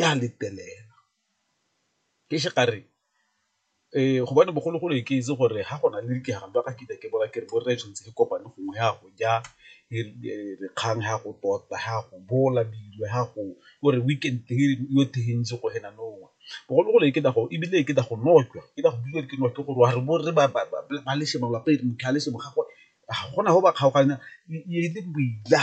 ya letlelela ke se ka re gobane bogologolo ke itse gore ga go na le dikgang ba ka ke ke bola ke re borre tshwanetse re kopane gongwe ya go ja kgang ya go tota ya go bola dilo ya go gore weekend yo tshegeditse go ena nowa bogologolo e ke go ebile e ke go nojwa ke go bua ke nojwa gore wa re bo rre ba le sengwe lapa e re motlhale sengwe ga gona go ba kgaoganya e le boila.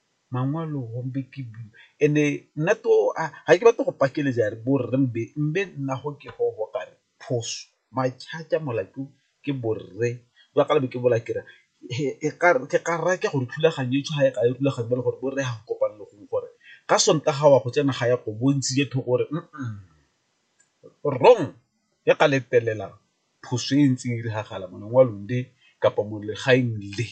mangwalo gompe ke and-e nna to ga ke batle go pakeletsa are bo rre mbe, mbe nna go ke go go kare phoso molato ke bo rre jwa ka le be ke bola ke re ke ka rata gore thulaganyo e tshwana ka rulaganya ba le gore bo rre ga go kopane le gongwe gore ka sontaga wa go tsena ga ya go bontsi je thoko gore wrong ya ka letelelang phoso e ntseng e diragala mo lengwalong le kapa mo legaeng le.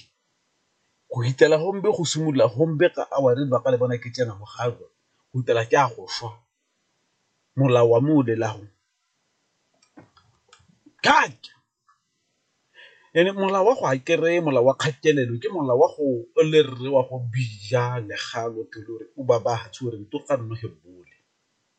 Go hitela gombe go simolola gombe ka awara e lebaka lebana ke tsena mo gae go hitela ke a go swa, molao wa me o bolelago and-e molao wa go a kere molao wa kgatelelo ke molao wa go le rre wa go bija le ga o ba ba o re .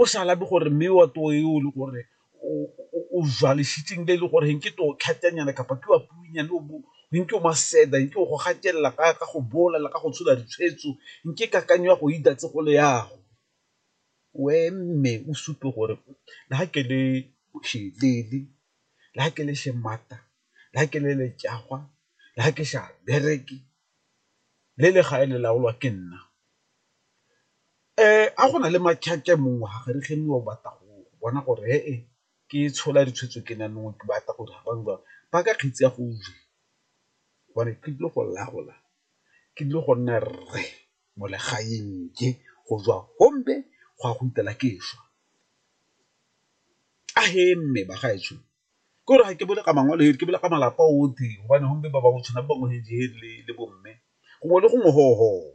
O sa labe gore mme wa too yo o le gore o jwalesitseng le e le gore ge nke too tlhatenyana kapa ke wa puinyane o bo nke o maseda nke o go gatelela ka ka go bola le ka go tshola ditshwetso nke kakanyo ya go e datse go le yago we mme o supe gore le ga ke le bošelele le ga ke le šemata le ga ke le letšagwa le ga ke sa bereke le le gae le laolwa ke nna a go na le mongwe ga re ge mongwe o batla go bona gore he e ke tshola ditshwetso ke nang nngwe ke batla gore ba ka kgetsi ya go ja gore ke tlile go laola ke tlile go nna rre mo legaeng ke go tswa gompe go ya go fitlhela ke šwa a he mme bagaetsho. ke gore ga ke bole ka mangwele ke bole ka malapa otlhe gobane gompe ba bangwe tshwana ba bangwe le bo mme gongwe le gongwe .